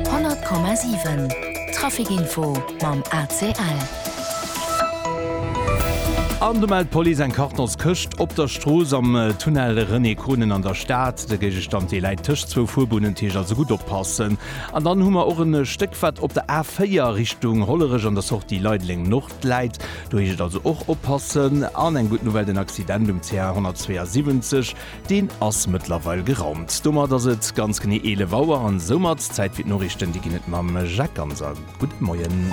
100,7 Trafic Info mam ACL. An do mellt d'Police eng Kartonskëscht op der Strooss am Tunnel René Konen an der Stad. De Géigestand dee läit tëscht zwou Fuerbunnenteeg, also gutt oppassen. An dann hu mer och e Stéck wat op der A4 Richtung Hollerech an der Sortie Leideleng Nord läit. Do heescht et also och oppassen. An eng gutt Nouvelle, den Accident um CR 172, Deen ass mëttlerweil geraumt. Domat ass et ganz genee 11 Auer an soumat Zäit fir d'Noriichten. Déi ginn et mam Jacques Ganser. Gudde Moien.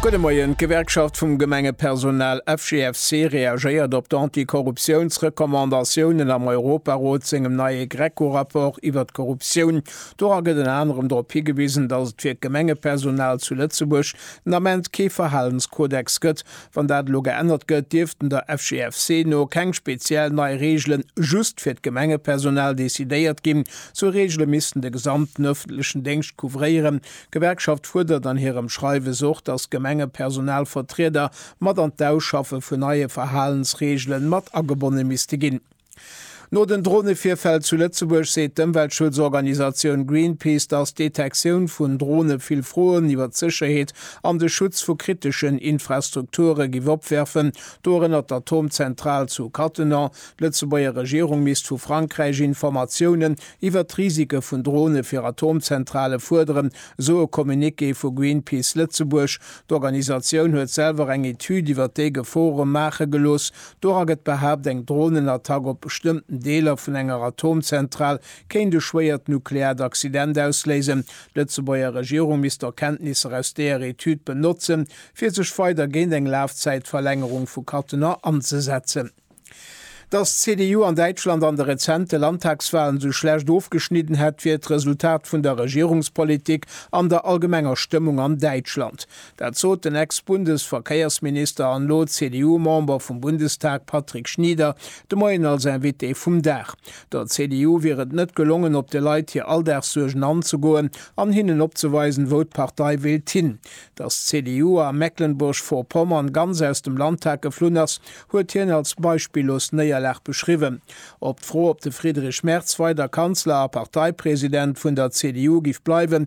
Gudde Moien. D'Gewerkschaft vum Gemengepersonal FGFC reagéiert op d'Antikorruptiounsrecommandatiounen am Europarot sengem neie Greco-Rapport iwwer d'Korruptioun. Dora gëtt ënner anerem drop higewisen, datt et fir d'Gemengepersonal zu Lëtzebuerg den Ament kee Verhalenskodex gëtt, Wann dat elo geännert gëtt, dierften der FGFC no keng speziell nei Reegele just fir d'Gemengepersonal decidéiert ginn. Sou Reegele missten de gesamten ëffentlechen Déngscht couvréieren. D'Gewerkschaft fuerdert an hirem Schreiwes och, datt d'Gemengepersonalvertrieder mat an d'Ausschaffe vun neie Verhalensreegele mat agebonne misste ginn. No den Dronevirfäll zu Lëtzebuerg seet d'Ëmweltschutzorganisatioun Greenpeace, datt d'Detektioun vun Drone vill Froen iwwer d'Sécherheet an de Schutz vu kriteschen Infrastrukture giff opwerfen, dorënner d'Atomzentral zu Cattenom. D'Lëtzebuerger Regierung misst vu Frankräich Informatiounen iwwer d'Risike vun Drone fir Atomzentrale fuerderen, esou e Communiqué vu Greenpeace Lëtzebuerg. D'Organisatioun huet selwer eng Etüd iwwer déi Gefore maache gelooss, Dora gëtt behaapt, eng Dronenattack op bestëmmten Deeler vun enger Atomzentral kéint e schwéiert nukleaart Accident ausléisen. D'Lëtzebuerger Regierung misst d'Erkenntnisser aus deeër Etüd benotzen, fir sech weider géint eng Lafzäitverlängerung vu Cattenom anzesetzen. Datt d'CDU an Däitschland an de rezente Landtagswalen esou schlecht ofgeschnidden hätt, wier d'Resultat vun der Regierungspolitik an der allgemenger Stëmmung an Däitschland. Dat sot den Ex-Bundesverkéiersminister an elo CDU-Member vum Bundestag Patrick Schnieder de Moien als Invité vum Dag. Der CDU wier et net gelongen, op de Leit hir Alldagssuergen anzegoen an hinnen opzeweisen, wou d'Partei wéilt hin. Datt d'CDU a Mecklenburg-Vorpommern ganz aus dem Landtag geflunn ass, huet hien als beispillos Néierlag beschriwwen. Op d'Fro, ob de Friedrich Merz weider Kanzler a Parteipresident vun der CDU giff bleiwen,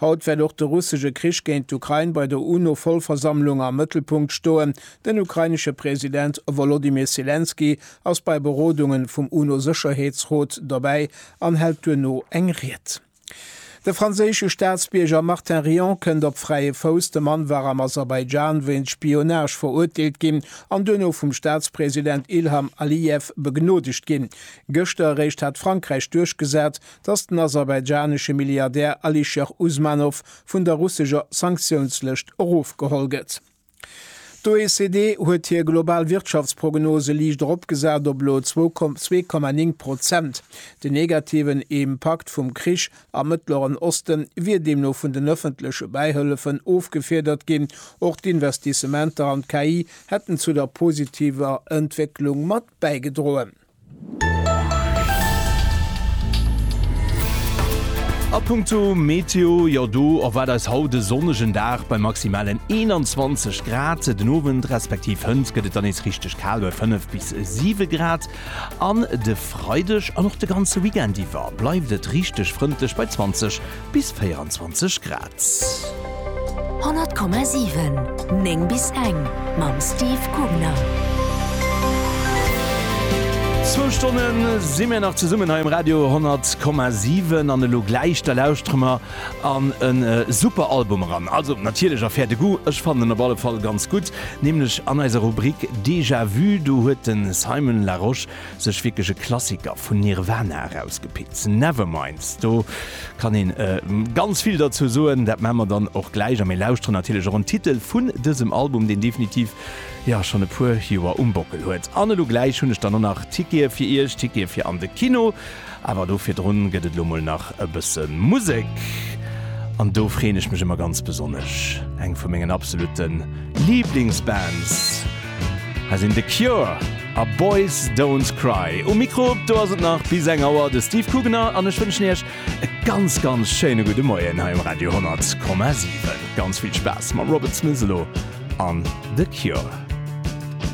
Haut wäert och de russesche Krich géint d'Ukrain bei der UNO-Vollversammlung am Mëttelpunkt stoen. Den ukrainesche President Wolodymyr Selenskyj ass bei Berodungen vum UNO-Sécherheetsrot dobäi an hält duerno eng Ried. De franséische Staatsbierger Martin Rion kënnt op fräie Fouss. De Mann war am Aserbaidschan wéinst Spionage verurteelt ginn an duerno vum Staatspresident Ilham Aliyev begnoodegt ginn. Gëschter eréischt hat Frankräich duerchgesat, dass den aserbaidschanesche Milliardär Alisher Usmanov vun der russescher Sanktiounslëscht erofgeholl gëtt. D'OECD huet hir global Wirtschaftsprognose liicht eropgesat op elo zwou Komma zwee Komma néng Prozent. Den negativen Impakt vum Krich am Mëttleren Oste wier deemno vun den ëffentleche Bäihëllefen ofgefiedert ginn. Och d'Investissementer an d'KI hätten zu der positiver Entwécklung mat bäigedroen. A punkto Meteo, jo do erwaart eis haut e sonnegen Dag bei maximalen 21 Grad. Den Owend respektiv hënt gëtt et dann nees richteg kal bei 5 bis 7 Grad. An de Freideg an och de ganze Weekend iwwer bleift et richteg frëndlech bei 20 Bis 24 Grad. 100,7 9 bis eng mam Steve Kugner. Zwou Stonne si mir nach zesummen hei um Radio 10,7 an elo gläich da lauschtere mer an e super Album eran. Also natierlech a faire de Goût, ech fannen en op alle Fall ganz gutt, nämlech an eiser Rubrik Déjà-vu. Do huet de Simon Larosche Sech wierklech e Klassiker vun Nirvana erausgepickt, Nevermind. Do kann een ganz vill derzou soen, dat maan mer dann och gläich. A mir lauschteren natierlech och en Titel vun dësem Album, deen definitiv jo schonn e puer Joer um Bockel huet. An elo gläich hunn ech dann och nach Tickete fir iech, Tickete fir an de Kino. Awer do virdrun gëtt et lo mol nach e bësse Musek. An do freen ech mech ëmmer ganz besonnesch, eng vu mengen absolute Liblingsbands. Hei sinn The Cure a Boys Don't Cry um Mikro. Do ass et nach bis eng Auer de Steve Kugener an ech wënschen iech e ganz, ganz schéine gudde Moien hei um Radio 100,7. Ganz vill Spaass mam Robert Smith elo an The Cure.